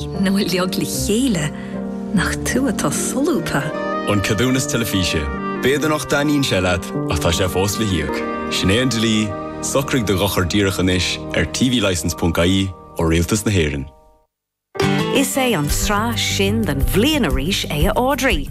Ná bíodh eagla ort chéile nach tú atá solúbtha. An Ceadúnas Teilifíse. B'fhéidir nach dtaitníonn sé leat ach tá sé fós le híoc. Sin é an dlí, Socraigh do dhochar díreach anois ar tvlicense.ie ó Rialtas na hÉireann. Is é an tsraith sin den bhliain arís é a Audrey!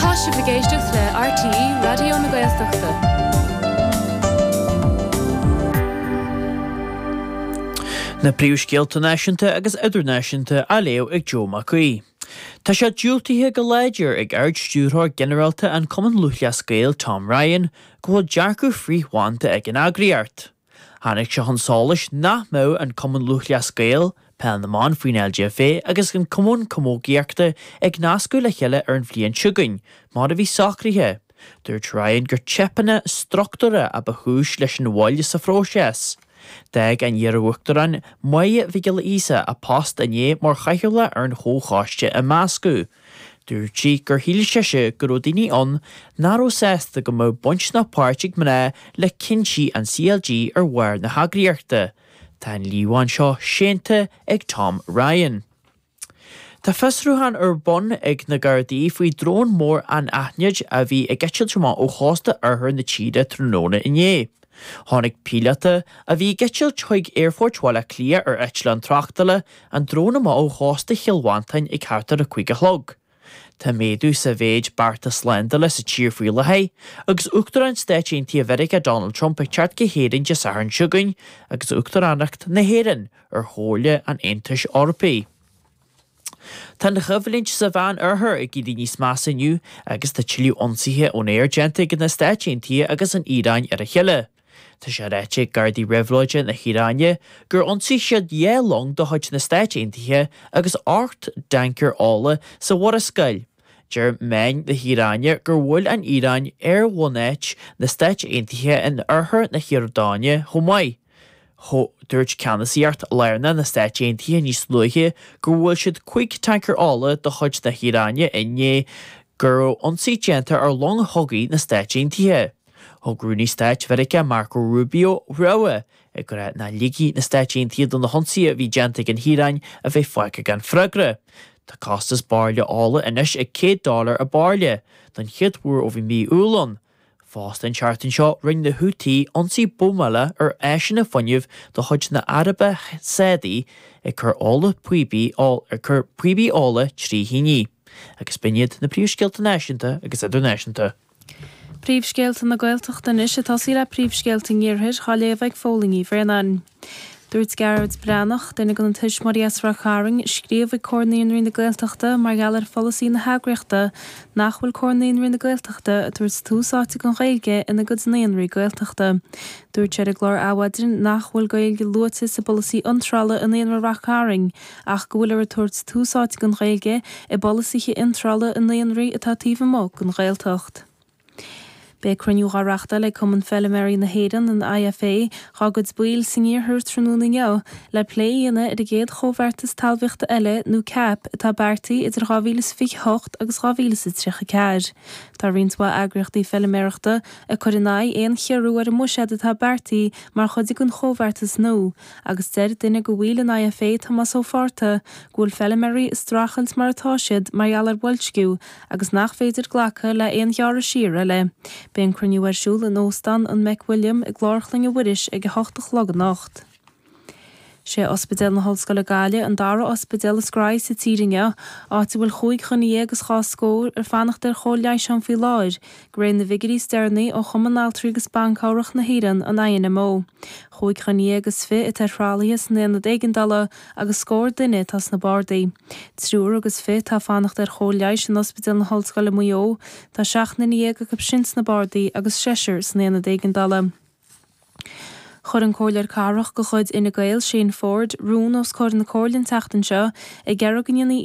Tá sibh ag éisteacht le RTÉ Raidió na Gaeltachta. Na príomhscéalta náisiúnta agus idirnáisiúnta á léamh ag Joe Mac Aoidh. Tá sé diúltaithe go láidir ag Ard-Stiúrthóir Ginearálta an Chumainn Lúthchleas Gael Tom Ryan go bhfuil dearcadh frith-bhanda ag an eagraíocht. Tháinig sé chun solais nach mbeadh an Cumann Lúthchleas Gael, Peil na mBan faoin LGFA agus an Cumann Camógaíochta ag nascadh le chéile ar an bhliain seo chugainn, mar a bhí socraithe. Dúirt Ryan gur teipeanna struchtúra a ba chúis leis an mhoill sa phróiseas. D'éirigh an iarUachtarán, Máire Mhic Giolla Íosa, as a post inné mar chathaoirleach ar an chomhchoiste imeasctha. Dúirt sí gur shíl sise go raibh daoine ann nach raibh sásta go mbeadh baint ná páirt ag mná le cinntí an CLG ar bharr na heagraíochta. Tá an líomhain seo séanta ag Tom Ryan. Tá fiosrúchán ar bun ag na Gardaí faoi dhrón mór anaithnid a bhí ag eitilt amach ó chósta oirthear na tíre tráthnóna inné. Tháinig píolóta, a bhí ag eitilt chuig Aerfort Bhaile Átha Cliath ar eitleán tráchtála, ar an drón amach ó chósta Chill Mhantáin ag thart ar a cúig a chlog. Tá méadú sa mhéid bearta slándála sa tír faoi láthair, agus Uachtarán Stáit Aontaithe Mheiriceá Donald Trump ag teacht go hÉirinn Dé Sathairn seo chugainn agus Uachtaránacht na hÉireann ar Chomhairle an Aontais Eorpaigh. Tá an choimhlint sa Mheán Oirthear ag éirí níos measa inniu agus tá tuilleadh ionsaithe ón aer déanta ag na Stáit Aontaithe agus an Iaráin ar a chéile. Tá sé ráite ag Gardaí Réabhlóide na hIaráine gur ionsaigh siad dhá long de chuid na Stáit Aontaithe agus ocht dtancaer ola sa Mhurascaill. Deir meáin na hIaráine gur bhuail an Iaráin ar bhunáit na Stáit Aontaithe in oirthear na hIordáine chomh maith. Dúirt Ceannasaíocht Lárnach na Stáit Aontaithe níos luaithe gur bhuail siad cúig tancaer ola de chuid na hIaráine i ndiaidh go raibh ionsaí déanta ar long chogaidh na Stáit Aontaithe. Thug Rúnaí Stáit Mheiriceá Marco Rubio rabhadh ag rá nach ligfidh na Stáit Aontaithe do na hionsaithe a bhí déanta ag an hIaráin a bheith fágtha gan freagra. Tá costas bairille ola anois ag 100 dollar an bairille, don chéad uair ó bhí mí Iúil ann. Fosta an tseachtain seo rinne na Houthi ionsaí buamála ar áiseanna fuinnimh de chuid na hAraibe Sádaí ag cur ola píobaí ag cur píobaí ola trí thine. Agus b'in iad na príomhscéalta náisiúnta agus idirnáisiúnta. Príomhscéalta na Gaeltachta anois ag tosaí le príomhscéalta an iarthair, á léamh ag Fódhla Ní Bhraonáin. Dúirt Gearóid Breathnach, duine de na tuismitheoirí as Ráth Chairn, a scríobh ag Comhar Naíonraí na Gaeltachta mar gheall ar pholasaí na heagraíochta, nach bhfuil Comhar Naíonraí na Gaeltachta ag tabhairt tús áite don Ghaeilge ina gcuid naíonraí Gaeltachta. Dúirt sé ar an gclár Adhmhaidin nach bhfuil Gaeilge luaite sa bpolasaí iontrála i Naíonra Ráth Cairn ach go bhfuilear ag tabhairt tús áite don Ghaeilge i bpolasaithe iontrála i naíonraí atá taobh amuigh den Ghaeltacht. Beidh cruinniú dhá reachtáil ag Cumann Feiliméaraí na hÉireann, an IFA, dhá gcuid baill san iarthar tráthnóna inniu le plé a dhéanamh ar an gcéad Chomhbheartas Talmhaíochta eile nó CAP atá beartaithe idir 2028 agus 2034. Tá roinnt mhaith eagraíochtaí feiliméarachta ag cur in aghaidh aon chiorrú ar an mbuiséad atá beartaithe mar chuid den Chomhbheartas nua agus deir duine de bhaill an IFA, Tomás Ó Fátharta, go bhfuil feiliméaraí ag streachailt mar atá siad mar gheall ar bhoilsciú agus nach féidir glacadh le haon ghearradh siar eile. Beidh an cruinniú ar siúl in Óstán an McWilliam i gClár Chloinne Mhuiris ag a hocht a chlog anocht. Sé Ospidéal na hOllscoile Gaillimh an dara ospidéal is gnóthaí sa tír inniu, áit a bhfuil chúig dhuine dhéag is dhá scór ag fanacht ar chóir leighis ann faoi láthair, de réir na bhfigiúirí is deireanaí ó Chumann Altraí agus Ban Cabhrach na hÉireann, an INMO. Chúig dhuine dhéag is fiche atá ar thralaithe san Aonad Éigeandála, agus scór duine atá sna bardaí. Triúr agus fiche atá ag fanacht ar chóir leighis in Ospidéal na hOllscoile, Maigh Eo, tá seacht nduine dhéag acu sin sna bardaí agus seisear san Aonad Éigeandála. Chuir an Comhairleoir Cathrach de chuid Fhine Gael, Shane Forde, rún os comhair na Comhairle an tseachtain seo ag iarraidh go ndéanfaí